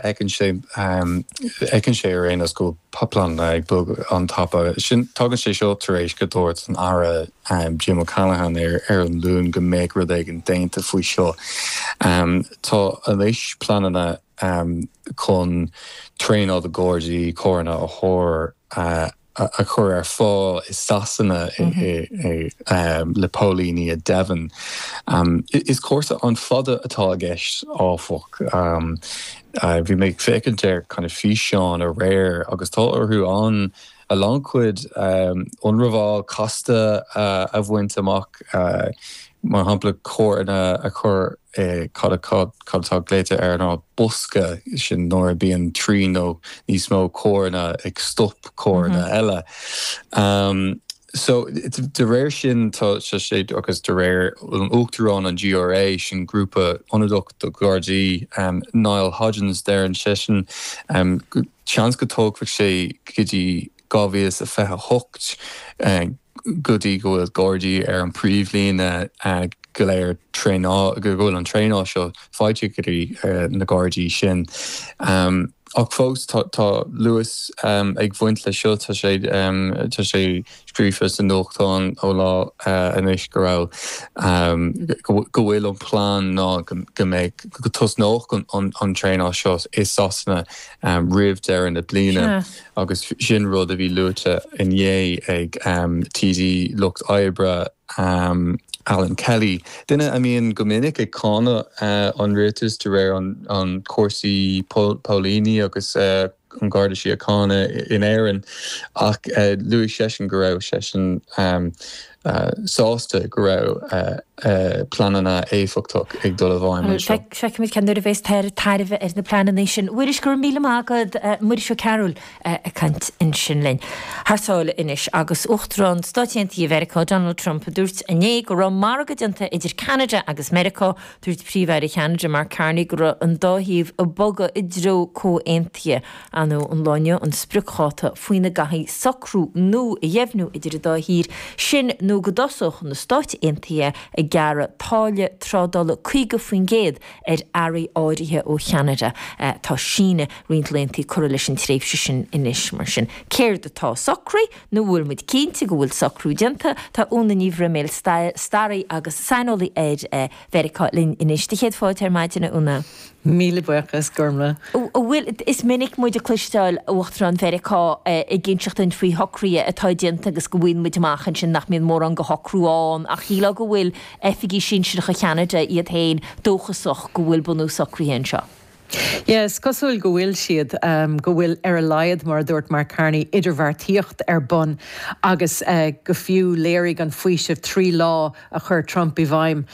fheiceann sé ar aon nós go bhfuil pleananna ag bogadh an tapa sin. Tagann sé seo tar éis go dúirt an Aire Jim O'Callaghan ar an Luan go mbeadh rud éigin déanta faoi seo. Tá anois pleananna chun traenáil do Ghardaí carranna a chur ar. a chur ar fáil i Sasana le póilíní i Devon. Is cúrsa an-fada atá i gceist áfach. Bhí mé ag féachaint ar físeáin aréir agus tá orthu ann a lán cuid ionramháil casta a bhaint amach. mar shampla carranna a chur i cad atá glaoite air ná bosca, sin nuair a bíonn trí nó níos mó carranna ag stop carranna eile. So de réir sin tá sé, agus de réir Uachtarán an GRA, sin grúpa ionadach do Ghardaí, Niall Hodgins, deireann seisean seans go dtógfadh sé go dtí 2028 go dtí go bhfuil Gardaí ar an bpríomhlíne go léir traenáil, go bhfuil an traenáil seo faighte go dtí na Gardaí sin. Ach fós tá luas ag bhaint le seo. Tá sé tá sé scríofa sa nuachtán ó lá anois go raibh go bhfuil an plean ná go mbeidh go tosnódh an traenáil seo i Sasana roimh deireadh na bliana. agus sin rud a bhí luaite inné ag TD Lucht Oibre, Alan Kelly, duine a mbíonn go minic ag cáineadh an rialtais de réir an chúrsaí póilíní agus an Gharda Síochána in Éirinn, ach luaigh seisean go raibh seisean. sásta go raibh pleananna éifeachtach ag dul i bhfeidhm anseo. Feicfimid cén uair a bhéas tairbhe ar na pleananna sin. Mhuiris, go raibh míle maith agat. Muiris Ó Cearbhaill ag caint ansin linn. Thar sáile anois agus Uachtarán Stáit Aontaithe Mheiriceá, Donald Trump, a dúirt inné go raibh margadh déanta idir Ceanada agus Meiriceá. Dúirt Príomh-Aire Cheanada, Mark Carney, go raibh an dá thaobh ag bogadh i dtreo comhaontaithe. Ba é an lá inné an spriocdháta faoina gcaithfí socrú nua a dheimhniú idir an dá thír, sin nó go dtosódh na Stáit Aontaithe ag gearradh táille trádála 50% ar earraí áirithe ó Cheanada. Tá síneadh roinnt laethanta curtha leis an tréimhse sin anois. Mar sin, céard atá socraithe? Nó an bhfuil muid cinnte go bhfuil socrú déanta? Tá Úna Ní Bhroiméil, staraí agus saineolaí ar Mheiriceá, linn anois. Do chéad fáilte ar maidin, a Úna. Míle buíochas, grma. An bhfuil, is minic muid ag cloisteáil Uachtarán Mheiriceá ag inseacht dúinn faoi shocruithe atá déanta agus go bhfaigheann muid amach ansin nach mbíonn mórán de shocrú ann ach shílfeá go bhfuil oifigigh sinsireacha Cheanada iad féin dóchasach go bhfuil bunús socruithe anseo. Yeah, is cosúil go bhfuil siad, go bhfuil ar a laghad, mar a dúirt Mark Carney, idirbheartaíocht ar bun agus go fiú léirigh an faoiseamh trí lá, a chuir Trump i bhfeidhm,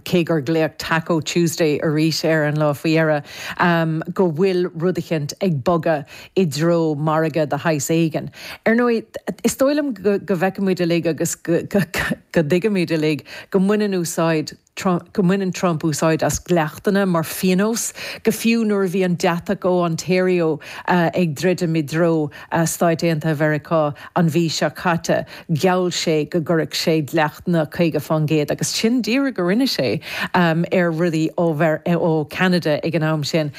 cé gur glaodh Taco Tuesday arís ar an lá faoi dheireadh, go bhfuil rud eicint ag bogadh i dtreo margadh de shaghas éigin. Ar ndóigh, is dóigh liom go bhfeicimid uilig agus go dtuigimid uilig go mbaineann úsáid Trump, go mbaineann Trump úsáid as dleachtanna mar phionós, go fiú nuair a bhí an deatach ó Ontario ag druidim i dtreo Stáit Aontaithe Mheiriceá an mhí seo caite. gheall sé go gcuirfeadh sé dleachtanna 50% agus sin díreach go rinne sé ar rudaí ó Cheanada ag an am sin.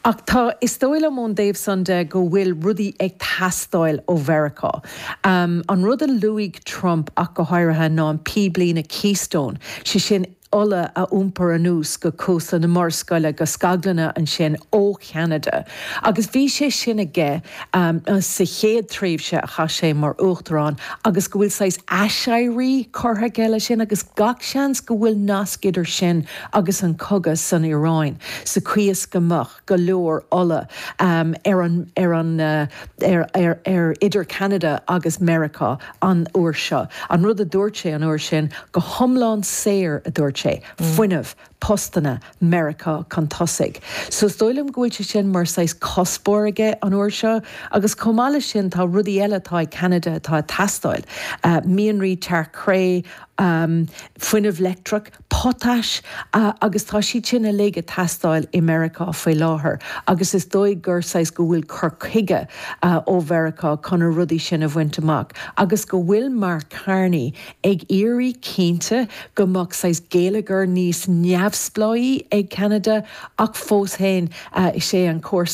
Ach tá, is dóigh liom ón dtaobh san de go bhfuil rudaí ag teastáil ó Mheiriceá. An rud a luaigh Trump ach go háirithe ná an píblíne Keystone, sé sin, ola a iompar anuas go Cósta na Murascaille go scaglanna ansin ó Cheanada agus bhí sé sin aige sa chéad tréimhse a chaith sé mar Uachtarán agus go bhfuil saghas aiséirí curtha aige leis sin agus gach seans go bhfuil nasc idir sin agus an cogadh san Iaráin sa chaoi is go go leor ola ar idir Ceanada agus Meiriceá an uair seo. An rud a dúirt sé an uair sin, go hiomlán saor a dúirt sé, fuinneamh, postanna, Meiriceá chun tosaigh. So is dóigh liom go bhfuil sé sin mar saghas cuspóir aige an uair seo agus chomh maith leis sin tá rudaí eile atá ag Ceanada atá ag teastáil, mianraí, tearc-chré, fuinneamh leictreach. potais, agus tá siad sin uilig ag teastáil i Meiriceá faoi láthair agus is dóigh gur saghas, go bhfuil cur chuige ó Mheiriceá chun na rudaí sin a bhaint amach agus go bhfuil Mark Carney ag iarraidh cinnte go mbeadh saghas géilleagar níos neamhspleáí ag Ceanada ach fós féin is é an